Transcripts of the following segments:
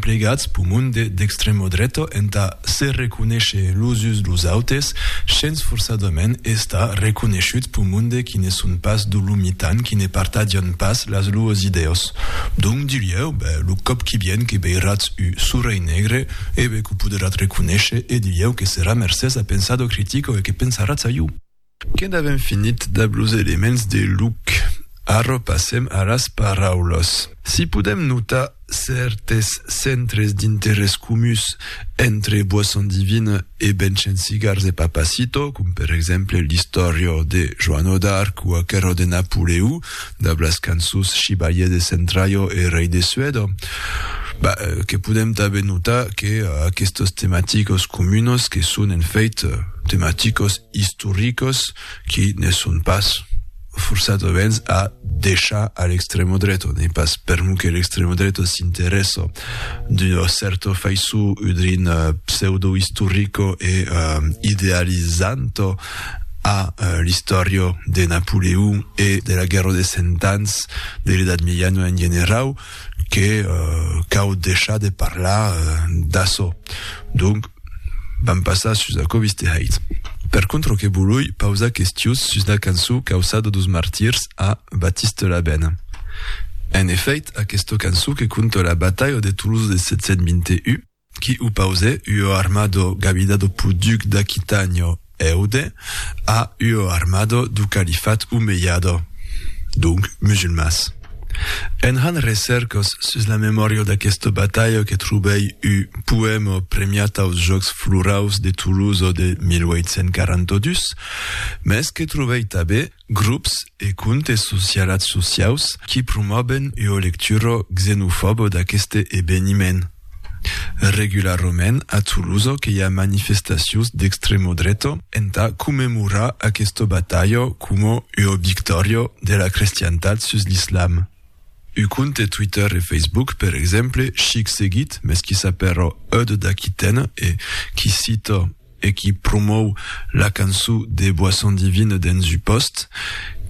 emplegats p'u monde d'extremo dreto entà se reconéisher los uns los autes, shens forçadament estar reconéishut p'u monde qui ne son pas d'u lo mitan, qui ne partadian pas las luos idèos. Donc dilhèu, bè, lo còp qui vien que veiratz u sorelh negre, e bè, qu'u podratz reconéisher, e dilhèu que serà mercés a pensado critico e que pensaratz a iu. Que'nd avèm finit dab los elements de luc, arrò passèm a las paraulas. Si podèm notar cèrtes centres d'interès comuns entre Boisson divine e Benchen cigars e Papacito, com per exemple l'istòria de Joano d'Arc o aquera de Napoleó dab las cançons Chibalier de Centraio e Rei de Suèda, bah, que podèm tanben notar que aquestos tematicos comunos que son en fèit tematicos istoricos qui ne son pas forçadaments a deishar a l'extremo dreto, n'ei pas per'mu que l'extremo dreto s'interessa d'ua cèrta faiçon udrin pseudo istorico e idealizanto a l'istòria de Napoleon e de la Guèrra des Cent Ans, de l'Edat Miejana en generau, que cau deishar de parlar d'açò. Donc, vam passar sus aquò vistejait. Per contra que volui pausar questius sus la cançon Causada dos martirs a Batiste Labène. En efèit, aquesta cançon que conta la batalha de Tolosa de 721, qui opause ua armado gavida do poduc d'Aquitanio Eude a ua armado do califat omeiado, donc musulmans. En hant recèrcos sus la memòria d'aquesta batalha que trobèi un poèma premiat aus Jòcs Floraus de Tolosa de 1842, mès que trobèi tanben Grops e comptes socialats sociaus qui promòben ua lectura xenofòba d'aqueste eveniment. Regularrament a Tolosa que i a manifestacions d'extremodreta entà commemorar aquesta batalha coma ua victòria de la crestiantat sus l'islam. Un compte Twitter e Facebook, per exemple, chic seguit, mès qui s'apèra Eud d'Aquitène e qui cita, e qui promòu la cançó de boisson divine dens un pòst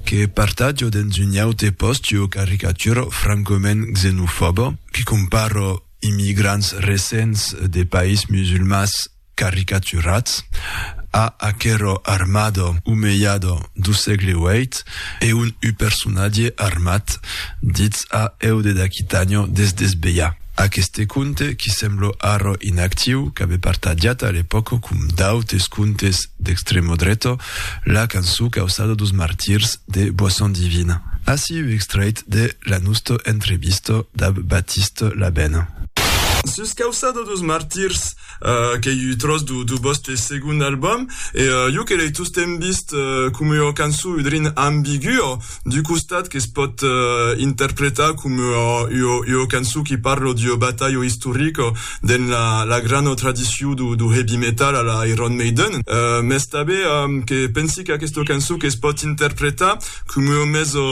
que partatjo dens un aute pòst ua caricaturo francament xenofòba qui compara immigrants recents de país musulmans caricaturats a aquero armado umejado do sègle ueit e un un personatge armat ditz a eu de d'aquitànio des desbelhar. Aqueste conte, qui semblo arro inactiu, qu'abe partajat a l'epòca com d'autes contes d'extremo dreto, la cançó causada dos martirs de Boisson Divine. Ací uu extrèit de la nosto entrevista dab Baptiste Labène. Sus causada dos martirs, Uh, qu'ei ua tròç do, do vòste segond album, e uh, jo que l'ei tostemp vist uh, com ua cançó udrin ambigua, d'u costat que es pòt uh, interpretar com ua, ua, ua cançó qui parla d'ua batalha istorica dens la, la grana tradicion do, do heavy metal a la Iron Maiden, uh, mès tanben um, que pensi qu'aquesta cançó que es pòt interpretar com ua mesa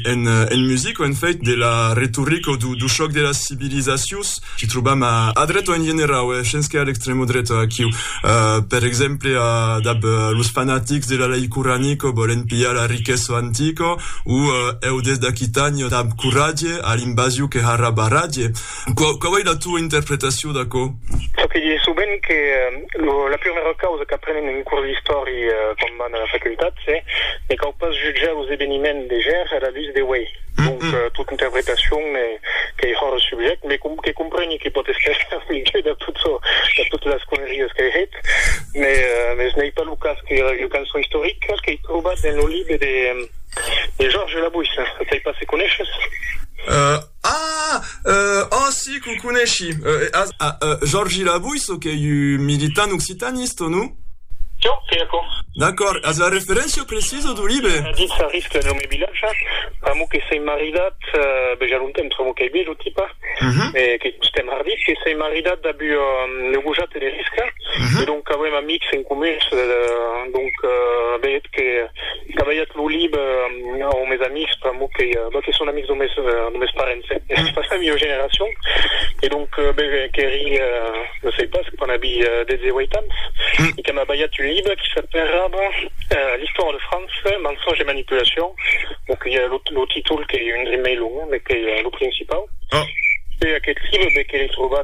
en, en musica, en fèit, de la retorica do, do chòc de las civilizacions, Qu'i trobam a a dreta en generau e shens que a l'extrèma dreta aquiu. Per exemple, dab los fanatics de la lei Qur'ani que vòlen pilhar la riquesa antica o eu des d'Aquitània dab coratge a l'invasiu que ha ra barratge. Quau ei la tua interpretacion d'aquò? Çò que dise sovent que lo la prumèra causa qu'aprenem en curs d'istòri quan vam a la facultat se ne cau pas jutjar los eveniments de ger a la lutz de uei. Donc, tot interpretacion qu'ei hòr eth subjèct, me que compreni que pòt èster eth milieu de tot çò, de totes es conneries qu'ei hèt, mès n'ei pas lo cas qu'era ua cançon istorica qu'ei trobat dens lo libre de Georges Labouisse, sei pas se coneishes? Ah! Òh, si, que o coneshi, Georges Labouisse, qu'ei un militant occitaniste, non? Ciau, qu'ei aquò. D'acòrd, as la referéncia precisa dau libre? Dins la risca de lo mei vilatge, pr'amor que sei maridat, bèi ja longtemps, pr'amor qu'ei biais lo tipa, e qu'ei tostemps hardit, que sei maridat dab ua gojata de risca, e donc qu'auem amics en comuns, donc bèi eth que, Qu'aviat lo lib au mes amics pr'amor que que son amics do mes do mes parents e pas la mieu generacion e donc qu'èri no sei pas quan abi 18 ans e que m'aviat un lib qui s'aperrava l'histoire de France mensonge et manipulation bon que lo lo títol qu'ei un drin mei long mes qu'ei lo principau e aquest lib be que l'ei trobat